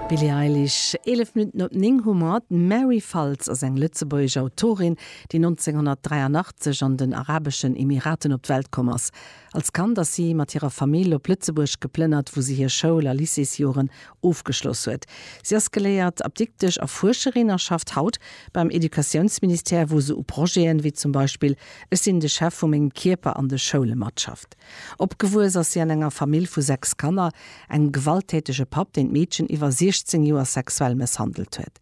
Billie Eilish, 11 Minutten op 9 hu mer et. D'Mary Faltz ass eng lëtzebuergesch Autorin, déi 1983 an den Arabeschen Emiraten op d'Welt komm ass. Als Kand ass si mat hirer Famill op Lëtzebuerg geplënnert, wou si hir Schoul a Lycéesjoren ofgeschloss huet. Si ass geléiert Apdiktesch a Fuerscherin a schafft haut beim Educatiounsministère, wou se u Projeten, wéi zum Beispill Ech sinn de Chef vu mengem Kierper an de Schoule matschafft. Opgewuess ass si an enger Famill vu sechs Kanner. Engem gewalttätege Papp, deen d'Meedchen iwwer 16 Joer sexuell mësshandelt huet.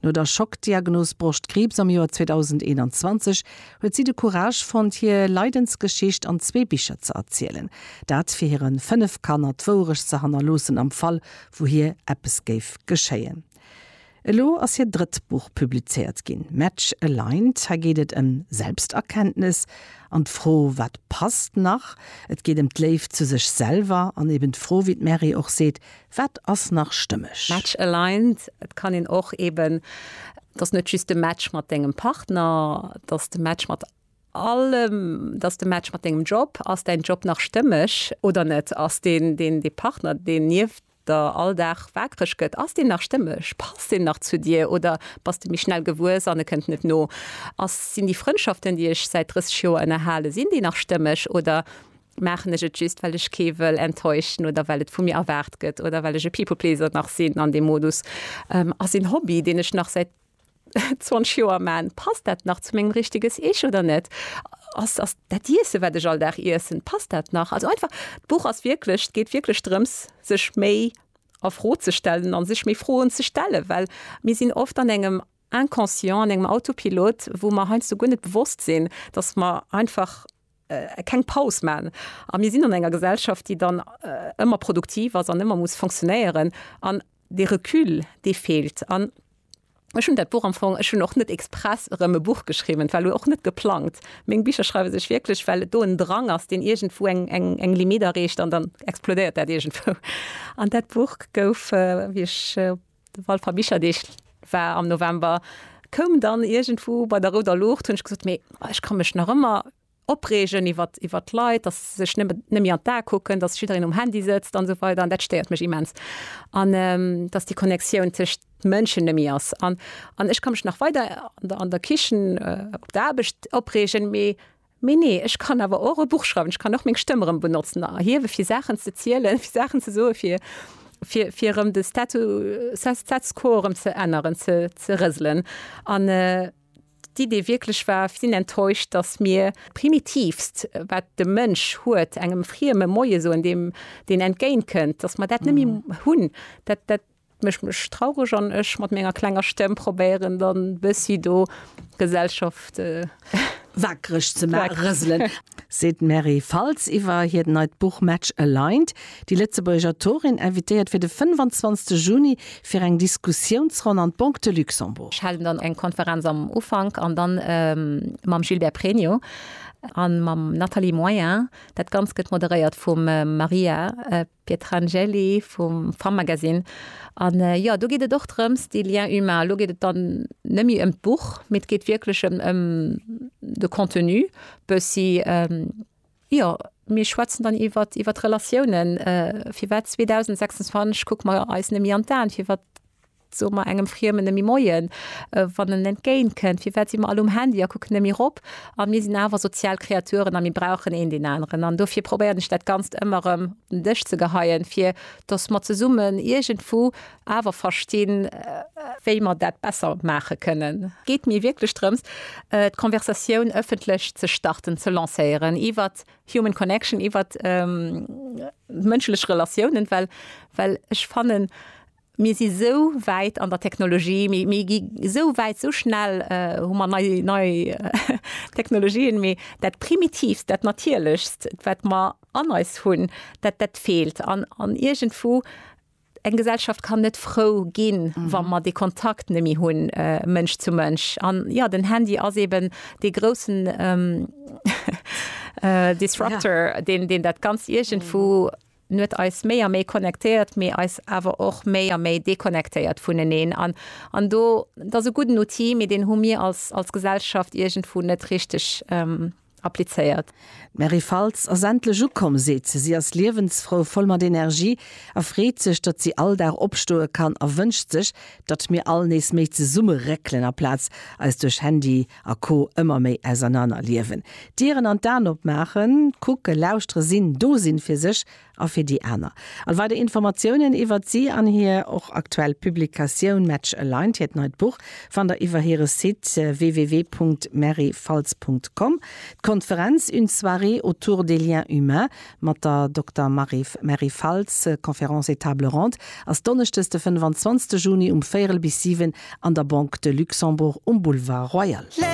No der Schockdiagnos Broschtkriibs am Joer 2021 huet si de Courage fonnt, hir Leidensgeschicht an zwee Bicher ze erzielen. Dat fir hire fënnef Kanner d'Wouerecht ze hannerloossen am Fall, wou hir eppes géif geschéien. Elo ass hiert drëtt Buch publizéiert ginn, Match Aligned. Hei geet et ëm Selbsterkenntnes an d'Fro, wat passt nach. Et geet ëm d'Léift zu sech selwer an eben d'Fro, wéi d'Mary och seet, wat ass nach stëmmeg. Match Aligned, et kann een och eben, et ass net just de Match mat dengem Partner, et ass de Match mat allem, et ass de Match mat dengem Job. Ass däin Job nach stëmmeg oder net? Ass dee Partner, deen nieft de Alldag waakreg gëtt, ass deen nach stëmmeg, passt en nach zu dir oder bass de méi schnell gewuess an e kënnt net no? Ass, sinn déi Frëndschaften, déi ech säit 30 Joer ënnerhalen, sinn déi nach stëmmeg oder maachen ech et just, well ech kee wëll enttäuschen oder well et vu mir erwaart gëtt oder well ech e People-Pleaser nach sinn an deem Modus? Ass een Hobby, deen ech nach säit 20 Joer man, passt dat nach zu mengem richteges Ich oder net? Ass ass dat Iessen, wat ech all Dag iessen, passt dat nach? Also einfach d'Buch ass wierklech, et geet wierklech drëms, sech méi a Fro ze stellen a sech méi Froen ze stellen, well mir sinn oft an engem Inconscient, an engem Autopilot, wou mer heiansdo guer net bewosst sinn, datt mer einfach keng Paus man a mir sinn an enger Gesellschaft, déi dann ëmmer produktiv ass an ëmmer muss fonctionnéieren an dee Recul dee feelt. An ech hunn dat Buch am Fong, ech hunn och net express erëm e Buch geschriwwen, et war elo och net geplangt. Meng Bicher schreiwe sech wierklech, well et do en Drang ass, deen iergendwou eng Limitt erreecht an dann explodéiert dat iergendwou. An dat Buch gouf, wéi ech op. De Walfer Bicherdeeg war am November, koum dann iergendwou bei der rouder Luucht, hunn ech gesot, mee ech ka mech nach ëmmer opreegen iwwert iwwert d'Leit, dass se sech net net méi an d'A kucken, dass jiddereen um Handy sëtzt an esou weider an dat stéiert mech immens. An dass déi Connectioun tëscht Mënschen net méi ass. An an ech ka mech nach weider an der an der Kichen, op der Aarbecht opreegen, mee, Mee nee, ech kann awer och e Buch schreiwen, ech kann och meng Stëmm erëm benotzen a erhiewe fir Saachen ze zielen, fir Saachen ze soen, fir, fir, fir erëm de Statu, Status quo erëm ze änneren, ze, ze rëselen. An d'Idee wierklech war, sinn enttäuscht, datt mir d'Primitivst, wat de Mënsch huet, engem Frieme Moie soen, deem deen entgéintkënnt, datt mer dat net méi hunn. Dat, dat. Et mécht mech traureg an ech mat menger klenger Stemm probéieren dann bëssi do Gesellschaft waakreg ze rëselen. Seet d'Mary Faltz iwwer hiert neit Buch Match Aligned. Déi Lëtzebuergesch Autorin invitéiert fir de 25 Juni fir eng Diskussiounsronn an d'Banque de Luxembourg. Ech halen dann eng Konferenz am Ufank an dann mam Gilbert Pregno a mam Nathalie Moyen. Dat Ganzt gëtt moderéiert vum Maria Pietrangeli vum Femmagazine. An jo, do geet et och drëms, dee Lien humain. Elo geet et dann net méi ëm d'Buch, mee et geet wierklech ëm, ëm de Contenu bëssi. Jo, mir schwätzen dann iwwer, iwwer d'Relatiounen. Firwat 2026 kucke mer eis net méi an d'Aen? Firwat? Soe mer engem Friemen nëmme Moien, wann en entgéint kënnt? Firwat si mer all um Handy a kucken nëmme erop? A mir sinn awer sozial Kreaturen a mir brauchen een deen aneren. An dofir probéieren ech dat Ganzt ëmmer erëm op den Dësch ze geheien, fir dass mer zesummen iergendwou awer verstinn, wéi mer dat besser maache kënnen. Et geet mir wierklech drëms, d'Conversatioun ëffentlech ze starten, ze lancéieren iwwer human connection, iwwer mënschlech Relatiounen, well ech fannen, Mir si sou wäit an der Technologie, mir gi sou wäit, sou schnell hu mer nei Technologien, mee dat Primitiivst, dat Natierlechst, wat mer an eis hunn, dat feelt. An iergendwou, eng Gesellschaft kann net frou ginn, wa mer dee Kontakt net méi hunn, Mënsch zu Mënsch. An jo, den Handy ass eeben dee groussen Disruptor, deen dat Ganzt iergendwou En huet eis méi a méi connectéiert, mee eis awer och méi a méi deconnectéiert vuneneen. An, an do, et ass e gudden Outil, mee deen hu mir als, als Gesellschaft iergendwou net richteg applizéiert. D'Mary Faltz ass endlech ukomm, seet se. Si ass liewensfrou, voll mat Energie a freet sech, datt si all Dag opstoe kann a wënscht sech, datt mir all nees méi zesumme réckelen, aplaz eis duerch Handy a co. Ëmmer méi ausernaner liewen. D'Dieren an d'An opmaachen, kucke, lauschtere, sinn, do sinn, fir sech a fir déi aner. All weider Informatiounen iwwert si an hir och aktuell Publikatioun Match Aligned, hiert neit Buch, fannt der iwwer hire Site www.merreyfalz.com. D'Konferenz Une soirée autour des liens humains Mat der Dokter Mary Faltz, Conférences et Tables rondes ass donneschdes de 25 Juni um véierel bis siwen an der Banque de Luxembourg um Boulevard Royal.